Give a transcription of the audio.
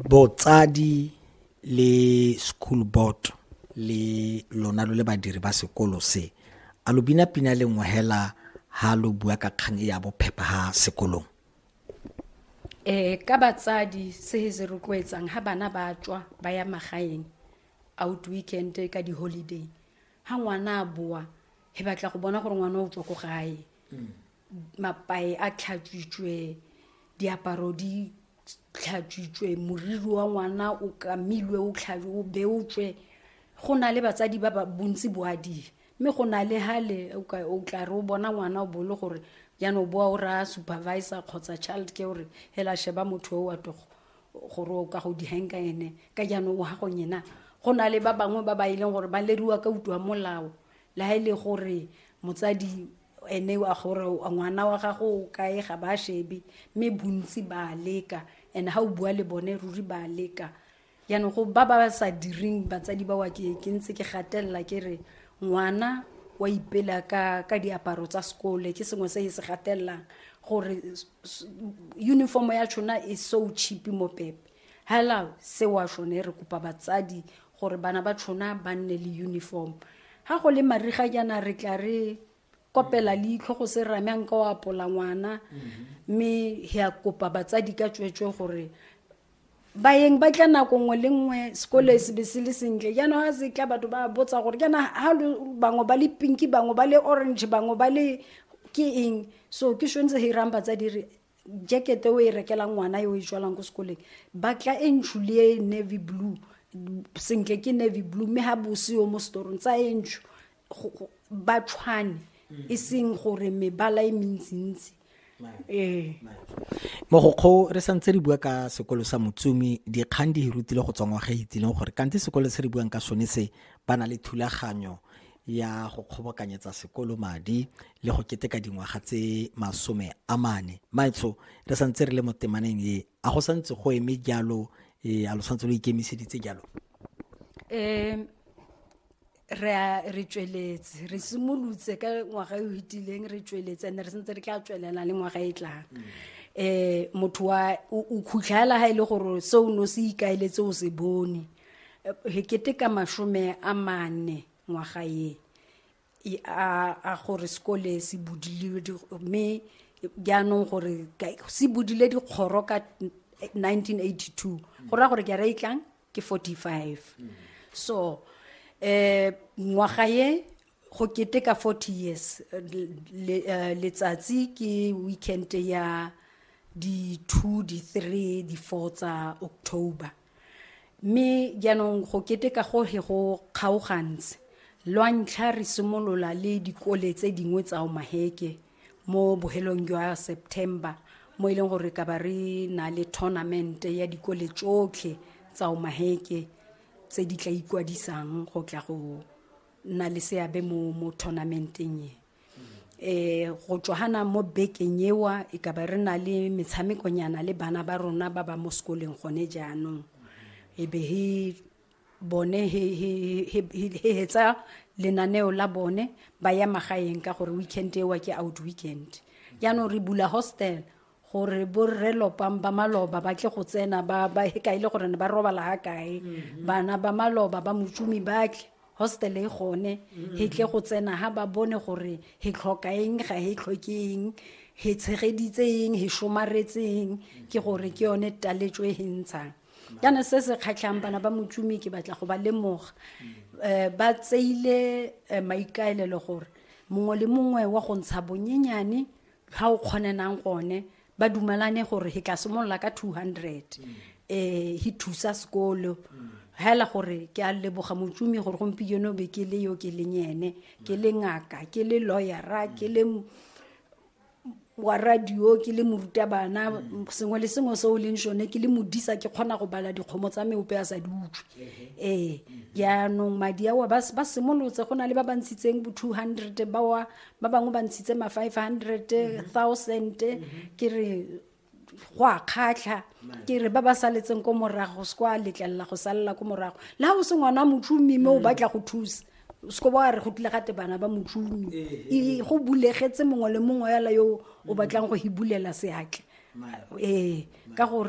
botsadi le school board le lona lo le badiri ba sekolo se a lo bina pina le nngwe hela ha lo bua ka kgang e ya bophepha ha sekolong eh ka batsadi se se rotloetsang ha bana ba tswa ba ya magaeng out weekend ka di holiday ha ngwana a boa he batla go bona gore ngwana o tswa ko gae mm. mapae a tlhatswitswe diaparo di tlhatswitswe moriri wa ngwana o kamilwe o o beotswe go na le batsadi ba ba bontsi boadile mme go na le hale o tla re o bona ngwana o bole gore jaanong boa o raya supervisor kgotsa child care gore hela sheba motho o wa togo gore o ka go dihenka ene ka jaanong o ha go nyena go na le ba bangwe ba ba e leng gore ba leriwa ka utlwa molao le ha e le gore motsadi ene a gore ngwana wa gago o kae ga ba shebe mme bontsi ba leka and ga o bua le bone ruri ba leka jaanong go ba ba sa direng batsadi ba wa ke ke ntse ke gatelela ke re ngwana wa ipela ka ka diaparo tsa sekole ke sengwe se e se gatelelang gore uniform ya tshona e so cheap mo pepe hello se wa shone re kopa batsadi gore bana ba tshona ba nne le uniform ga go le mariga jaana re tla re kopela leitlho go se rame a nka o apola ngwana mme he a kopa batsadi ka tsweetswe gore bayeng ba tla nako nngwe le nngwe sekole se be se le sentle jaanong ga se tla batho ba botsa gore jaana ga bangwe ba le pinki bangwe ba le orange bangwe ba le ke eng so ke tshwanetse ge irang batsadi re jacket o e rekelang ngwana yo e jwalang ko sekoleng batla e ntshu le e navy blue sentle ke navy blue mme ga bose yo mo setorong tsa e ntshu ba tshwane mm. e seng gore mebala e mentsintsi ee mogokgo re santse re bua ka sekolo sa motsumi dikgang di hirutile go tswa ngwaga e itsileng gore kante sekolo se re buang ka sone se ba na le thulaganyo ya go kgobokanyetsa sekolo madi le go keteka dingwaga tse masome a mane maetsho re santse re le mo temaneng e a go santse go eme jalo e a lo santse lo ikemiseditse jalo um re re tsweletse re simolotse ka ngwaga e o fetileng re tsweletse and re sentse re tla tswelela le ngwaga e tlang um motho wa o khutlhela ga e le gore se o ne o se ikaeletse o se bone hekete ka masome a mane ngwaga ye a gore sekole se budile mme jaanong gore se budile dikgoro ka 1982 go raya gore ke ra itlang ke 45 so um ngwaga ye go keteka 40 years eh, letsatsi ke weekend ya di-two di-three di-four tsa october mme jaanong go keteka go he go kgaogantse lwa ntlha re simolola le dikole tse dingwe tsa omaheke mo bohelong jwa september mo e leng gore ka ba re na le tournament ya dikole tsotlhe tsa omaheke tse di tla ikwadisang go tla go nna le seabe mo mo tournamenteng e eh go tswana mo bekeng ewa e ka ba re na le metshamekonyana le bana ba rona ba ba mo sekoleng gone jaanong e be he bone he he he he hetsa lenaneo la bone ba ya magaeng ka gore weekend ewa ke out weekend jaanong re bula hostel gore borre lopang ba maloba ba tle go tsena ba ba e kae le gore ne ba robala ha kae mhm. bana ba maloba ba motsumi ba tle hostel e gone mhm. he tle go tsena ha ba bone gore he tlhoka eng ga he tlhoke eng he tshegeditse eng he somaretseng ke gore ke yone taletso e he ntshang kana se se kgatlhang bana ba motsumi ke batla go ba lemoga um ba tseile eh, maikaelelo gore mongwe le mongwe wa go ntsha bonyenyane ga o kgonenang gone ba dumalane gore he tla simolola ka 200 um he thusa sekolo hela gore ke a leboga motsumi gore gompieno be ke le yo ke leng ene ke le ngaka ke le lawyera ke le wa radio ke le morutabana sengwe le sengwe se o leng sone ke le modisa ke kgona go bala dikgomo tsa meope a sa di utlwe ee jaanong madi ao ba simolotse go na le ba ba ntshitseng bo two hundred bawa ba bangwe ba ntshitse ma 500 thousand ke re go a kgatlha ke re ba ba saletseng ko morago se kwa letlelela go salela ko morago le ga o se ngwana motšhomi mme o mm. batla go thusa seko ba re go tlile gate bana ba motšhomi eh, eh. go bulegetse mongwe le mongwe yala yo o mm. batlang go hibulela seatle ee ka gore